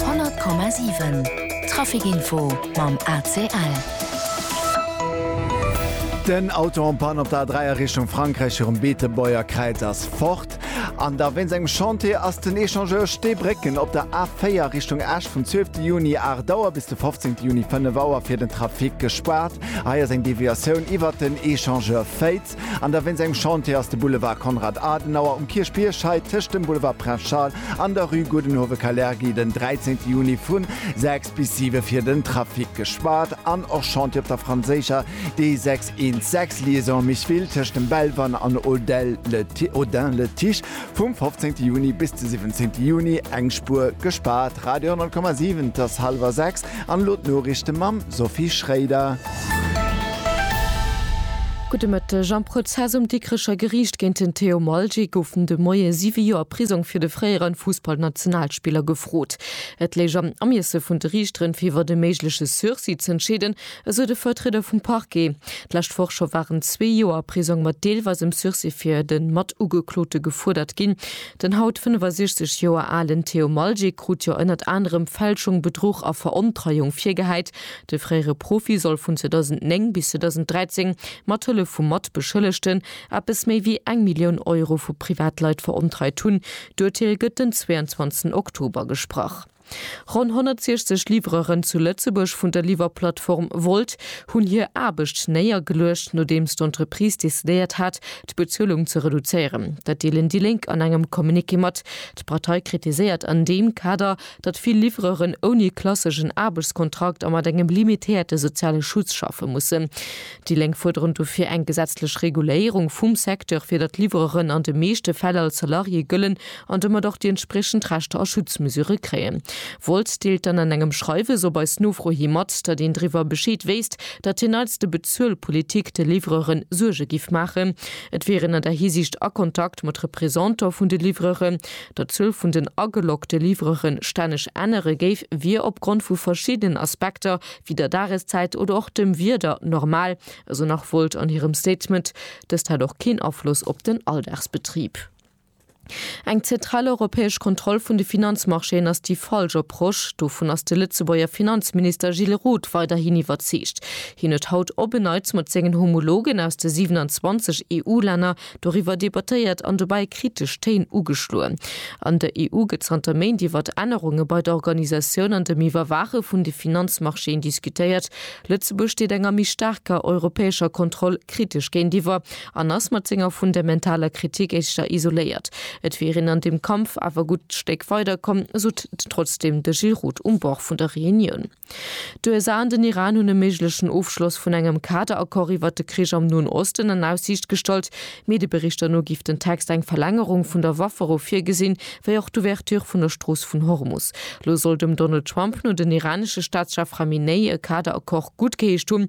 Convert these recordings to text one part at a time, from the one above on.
100,7 Trafic-Info mam ACL. Den Auto en Panne op der A3 a Richtung Frankräich virum Beetebuergkräiz ass fort. An da wéinst engem Chantier ass den Echangeur Steebrécken op der A4 a Richtung Esch vum 12 Juni 8 Auer bis de 15 Juni 5 Auer fir den Trafic gespaart. Hei ass eng Deviatioun iwwert den Echangeur Féiz. An da wéinst engem Chantier ass de Boulevard Konrad Adenauer um Kierchbierg hei tëscht dem Boulevard Prince Charles an der Rue Gudenhove-Kalergi den 13 Juni vu 6 bis 7 fir den Trafic gespaart an och Chantier op der franséischer D616 Liaison Micheville tëscht dem Belval an Audelle-le-Tiche. Vum 15 Juni bis de 17 Juni, eng Spuer gespaart, Radio 10,7, 't ass hallwer 6 an elo d'Noriichte mam Sophie Schréider. Gudde Mëtteg, Am Prozess um Dikrecher Geriicht géint den Theo Malgi goufen de Moie siwe Joer Prisong fir de fréiere Fussballnationalspiller gefrot. Et léich am Ermiesse vun de Riichteren, fir iwwert e méigleche Sursis z'entscheeden, Esou de Vertrieder vum Parquet. D'lescht Woch scho waren zwee Joer Prisong mat deelweisem Sursis fir de Matugeklote gefuerdert ginn. Den haut 65 Joer alen Theo Maljic krut jo ënnert anerem Fälschung, Bedruch a Verontreiung virgehäit. De fréiere Profi soll vun 2009 bis 2013 mat Hëllef vu Matbeschëllegten eppes méi wéi eng Millioun Euro vu Privatleit verontreit hunn. D'Urteel gëtt den 22 Oktober gesprach. Ronn 160 Livreuren zu Lëtzebuerg vun der Liwwerplattform Wolt hunn hir Aarbecht néiergeluecht, nodeems d'Entreprise decidéiert hat, d'Bezuelung ze reduzéieren. Dat deelen déi Lénk an engem Communiqué mat. D'Partei kritiséiert an deem Kader, datt vill Livreuren ouni klasseschen Aarbechtskontrakt a mat engem limitéierte soziale Schutz schaffe mussen. Déi Lénk fuerderen dofir eng gesetzlech Reguléierung vum Secteur, fir datt Livreuren an de meeschte Fäll als Salarié gëllen an domat och déi entspriechend Rechter a Schutzmesüre kréien wollt, deelt dann an engem Schreiwes op eis Nofro hi mat, datt een driwwer Bescheed wéisst, datt hien eis de Bezuelpolitik, de Livreuren, Suerge giff maachen. Et wier een an där Hisiicht a Kontakt mat Representanter vun de Livreuren. Datt d'Zuel vun den ageloggte Livreure stänneg ännere géif, wier opgrond vu verschiddenen Aspekter, wéi der Dageszäit oder och dem Wieder, normal, esou nach Wolt an hirem Statement. Dëst hätt och keen Afloss op den Alldagsbetrib. Eng zentral europäesch Kontroll vun de Finanzmarchéen ass déi falsch Approche. Dovun ass de Lëtzebuerger Finanzminister Gilles Roth weiderhin iwwerzeegt. Hien huet haut op en Neits mat sengen Homologen aus de 27 EU-Länner doriwwer debattéiert an dobäi kritesch Téin ugeschloen. An der EU gëtt zanter Méint iwwer Ännerunge bei der Organisatioun an dem Iwwerwaache vun de Finanzmarchéen diskutéiert. Lëtzebuerg steet enger méi staarker europäescher Kontroll kritesch géintiwwer. En ass mat senger fundementaler Kritik éischter isoléiert. Et wier een an dem Kampf awer e gutt Stéck weider komm, sot trotzdeem de Gilles Roth um Bord vun der Reunioun. D'USA an den Iran hunn e méiglechen Ofschloss vun engem Kaderaccord iwwert de Krich am Noen Osten an Aussiicht gestallt. Medieberichter no géif den Text eng Verlängerung vun der Waffero virgesinn, wéi och d'Ouverture vun der Strooss vun Hormus. Lo soll dem Donald Trump no den iranesche Staatschef Khamenei e Kaderaccord guttgeheescht hunn.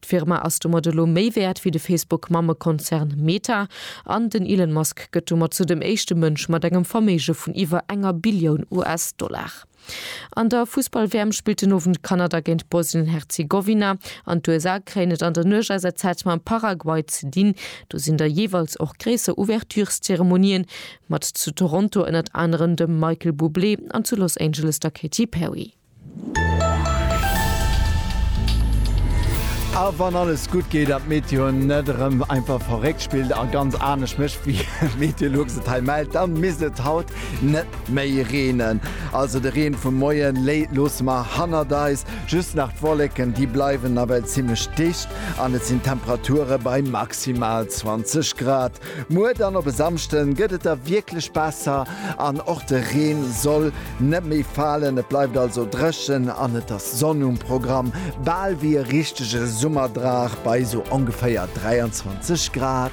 D'Firma ass domat elo méi wäert wéi de Facebook-Mammekonzern Meta an den Elon Musk gëtt domat sou dem éischte Mënsch mat engem Verméige vun iwwer enger Billioun US-Dollar. An der Fussball-WM spillt den Owend Kanada géint Bosnien-Herzegowina an d'USA kréien et an der Nuecht aus der Zäit mam Paraguay ze dinn. Do sinn da jeeweils och gréisser Ouvertureszeremonien, mat zu Toronto ënnert anerem dem Michael Bublé an zu Los Angeles der Katy Perry. A wann alles gutt geet an d'Meteo net erëm einfach verréckt spillt a ganz anescht mécht wéi Meteolux et hei mellt, dann misst et haut net méi reenen. Also de Reen vum Moie loosse mer hannert eis. Just nach d'Wolleken, déi bleiwen nawell zimmlech dicht an et sinn Temperature bei maximal 20 Grad. Muer dann op e Samschde gëtt et da wierklech besser an och de Reen soll net méi falen. Et bleift also dréchen an et ass Sonn um Programm, bal wéi e richtege Summerdrag bei esou ongeféier 23 Grad.